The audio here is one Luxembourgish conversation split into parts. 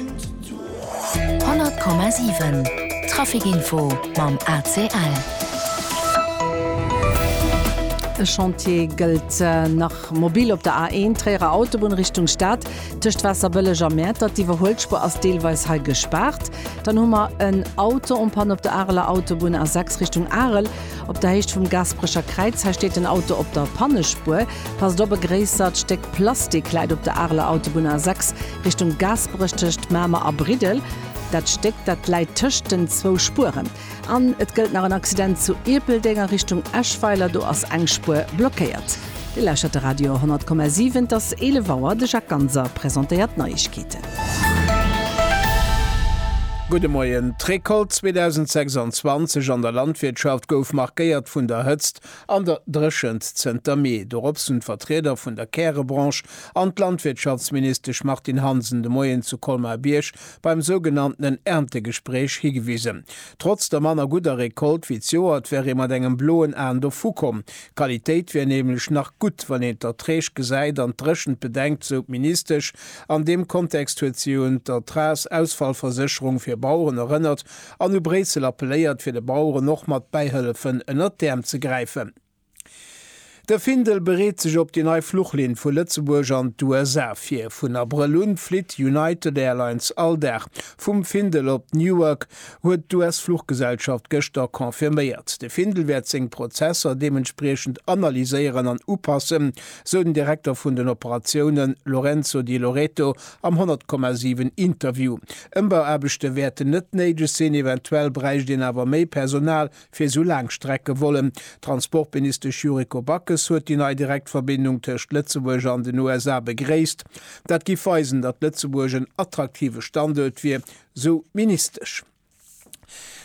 100,7 Trafikinfo mam ACL. E Chantier gëllt nach mobil op der A1, Tréierer Autobunn Richtung Stad, tëscht Waasserbëlleg a Mäertert. D'Iwwerhuelspur ass deelweis hei gespaart. Dann hu mer en Auto en panne op der Areler Autobunn, A6 Richtung Arel, op der Héicht vum Gasperecher Kräiz. Hei steet den Auto op der Pannespur. Passt op, e gréissert Stéck Plastik läit op der Areler Autobunn, A6. Richtung Gaasperech tëscht Mamer a Briddel. Dat Stéck, dat läit tëscht den zwou Spueren. An et gëllt nach en Accident zu Ierpeldeng a Richtung Eschweiler, do ass eng Spuer blockéiert. Dir lauschtert de Radio 100,7. Et ass 11 Auer. De Jacques Ganser presentéiert d'Neiegkeeten. Gudde Moien. D'Recolte 2026 an der Landwirtschaft gouf markéiert vun der Hëtzt An der Dréchent zënter Mee dorops hunn d'Vertrieder vun der Kärebranche an d'Landwirtschaftsministesch Martine Hansen de Moien zu Colmar-Bierg beim sougenanntenen Erntegespréich higewisen. Trotz der manner gudder Recolte wéi d'Joert wär ee mat engem bloen Aen dovu komm. D'Qualitéit wär nämlech nach gutt, wann een d'Erträg gesäit an d'Dréchent bedenkt, sou d'Ministesch. An deem Kontext huet si un d'Ertragsausfallversécherung fir Baueren erënnert, An u Bréissel appelléiert, fir de Baueren och mat Bäihëllefen ënnert d'Äerm ze gräifen. De Findel bereet sech op déi nei Fluchlinn vu Lëtzebuerg an d'USA vir. Vun Abrëll un flitt United Airlines all Dag vum Findel op Newark, huet d'US-Fluchgesellschaft gëschter confirméiert. De Findel wäert seng Prozesser deementspriechend analyséieren an upassen, sou den Direkter vun den Operatioune Lorenzo Di Loreto Am 100,7 Interview. Ëmbauaarbechte wäerten net néideg sinn, eventuell bräicht een awer méi Personal fir esou Laangstreckevollen. D'Transportministesch Yuriko Backes huet déi nei Direktverbindung tëscht Lëtzebuerg an den USA begréisst. Dat giff weisen, datt Lëtzebuerg en attraktive Standuert wier, sou d'Ministesch.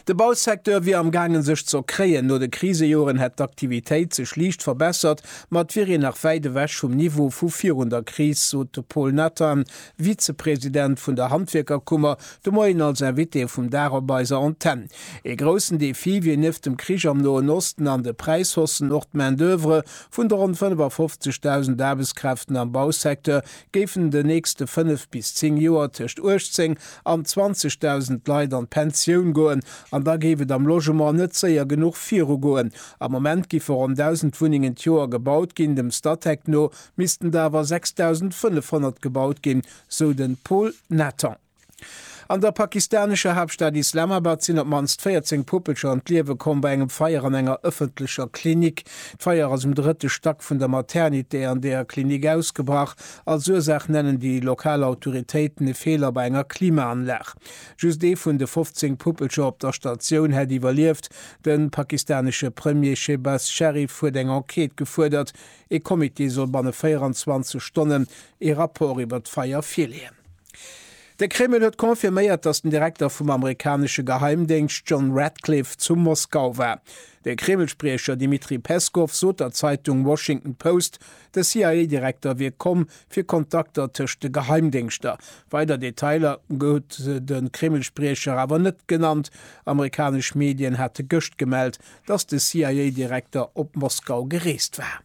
De Bausecteur wier am gaangen sech ze erkréien. No de Krisejoren hätt d'Aktivitéit sech liicht verbessert, ma et wier een nach wäit ewech vum Niveau vu virun der Kris, sot de Paul Nathan, Vizepresident vun der Handwierkerkummer, de Moien als Invité vum Dag op eiser Antenn. Ee groussen Defi wier nieft dem Krich am Noen Osten an de Präishaussen och d'Main-d'oeuvre vun de ronn 55.000 Aarbechtskräften am Bausecteur, géifen den nächste 5 bis 10 Joer tëscht 18 an 20.000 Leit an d'Pensioun goen an da géif et am Logement net séier genuch virugoen. Am Moment giffe ronn 1.000 Wunnengen d'Joer gebaut ginn, dem Statec no missten der awer 6.500 gebaut ginn, sou de Paul Nathan. An der pakistanescher Haaptstad Islamabad sinn op mannst 14 Puppelcher ëm d'Liewe komm bei engem Feier an enger ëffentlecher Klinik. D'Feier ass um drëtte Stack vun der Maternité an där Klinik ausgebrach. Als Ursaach nennen déi lokal Autoritéiten e Feeler bei enger Klimaanlag. Just ee vun de 15 Puppelcher op der Statioun hätt iwwerlieft. De pakistanesche Premier Shehbaz Sharif huet eng Enquête gefuerdert. Ee Comité soll banne 24 Stonnen ee Rapport iwwer d'Feier virleeën. De Kreml huet confirméiert, datt den Direkter vum amerikanesche Geheimdéngscht John Ratcliffe zu Moskau war. De Kreml-Spriecher Dmitri Peskow sot der Zeitung Washington Post, de CIA-Direkter wier komm, fir Kontakter tëscht de Geheimdéngschter. Weider Detailer huet de Kreml-Spriecher awer net genannt. Amerikanesch Medien hate gëscht gemellt, datt de CIA-Direkter op Moskau gereest war.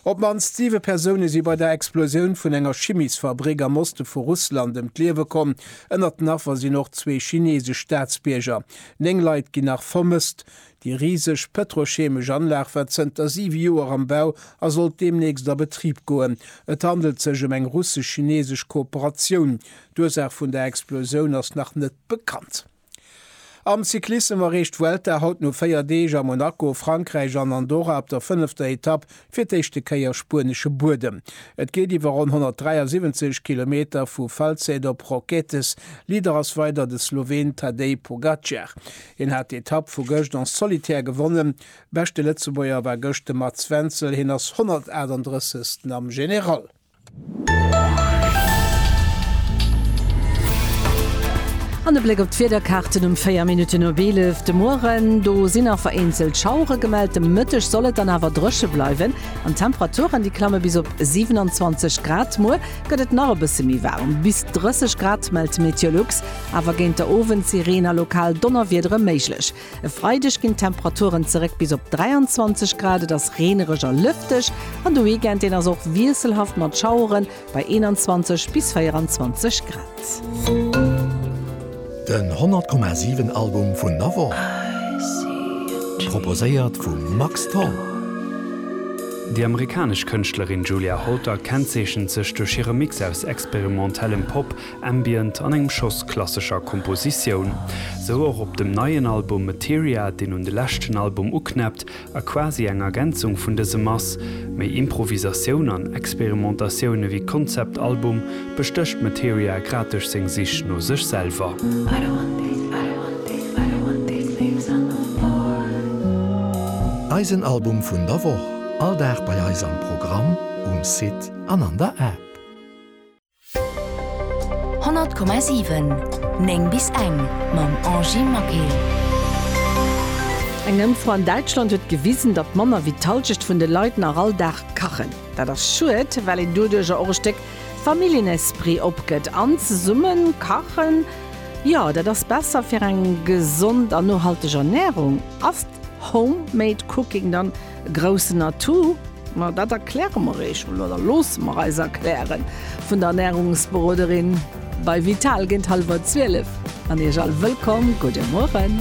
Op d'mannst siwe Persoune si bei der Explosioun vun enger Chimiesfabrick am Oste vu Russland ëm d'Liewe komm. Ënnert den Affer sinn och zwee chineesesch Staatsbierger. Néng Leit ginn nach vermësst. Déi riseg pëtrochemesch Anlag war zënter siwe Joer am Bau a sollt deemnächst a Betrib goen. Et handelt sech ëm eng russesch-chineesesch Kooperatioun. D'Ursaach vun der Explosioun ass nach net bekannt. Am Cyclissem erreecht d'Vuelta haut no 4 Deeg a Monaco, Frankräich an Andorra op der fënnefter Etapp fir d'éischte Kéier spuenesche Buedem. Et geet iwwer ronn 173 Kilometer vu Falset op Roquetes. Leader ass weider de Sloween Tadej Pogacar. Hien hat d'Etapp vu gëscht en solitaire gewonnen. Beschte Lëtzebuerger war gëscht de Mats Wenzel, hien ass 138. am General. An e Bléck op d'Wiederkaarten um 4 Minutten op 11 de Mueren. Do sinn nach vereenzelt Schauere gemellt. De Mëtteg soll et dann awer dréche bleiwen an d'Temperaturen, déi klamme bis op 27 Grad. Muer gëtt et nach e bësse méi waarm, bis 30 Grad, mellt Meteolux. Awer géint der Owend si Reen a lokal Donnerwiedere méiglech. E Freideg ginn d'Temperaturen zeréck bis op 23 Grad, et ass reenereg a lëfteg an de Weekend deen ass och wiesselhaft mat Schaueren bei 21 bis 24 Grad. Den 100 Komma 7 Album vun der Woch, proposéiert vum Max Tholl. Déi amerikanesch Kënschtlerin Julia Holter kennzeechent sech duerch hire Mix aus experimentellem Pop, Ambient an engem Schoss klassescher Kompositioun. Sou och op dem neien Album Materia, deen un de leschten Album uknäppt a quasi eng Ergänzung vun dësem ass. Méi Improvisatioun an Experimentatioun ewéi Konzeptalbum bestécht Materia grad duerch seng Sich no sech selwer. Eisen Album vun der Woch, all Dag bei eis am Programm, um Site an an der App. 100,7 9 bis eng mam Angie Maquet. Eng Ëmfro an Däitschland huet gewisen, datt manner wéi d'Hallschecht vun de Leit nach all Dag kachen. Dat ass schued, well een doduerjer och e Stéck Familljenesprit opgëtt. An zesumme kachen, jo, dat ass besser fir eng gesond an nohalteg Ernärung. Ass Home-Made Cooking dann Groussen Atout? Ma dat erkläre mer eech mol, oder loosse mer eis erklären, vun der Ernärungsberoderin bei Vital géint hallwer 12. An iech all wëllkomm. Gudde Mueren.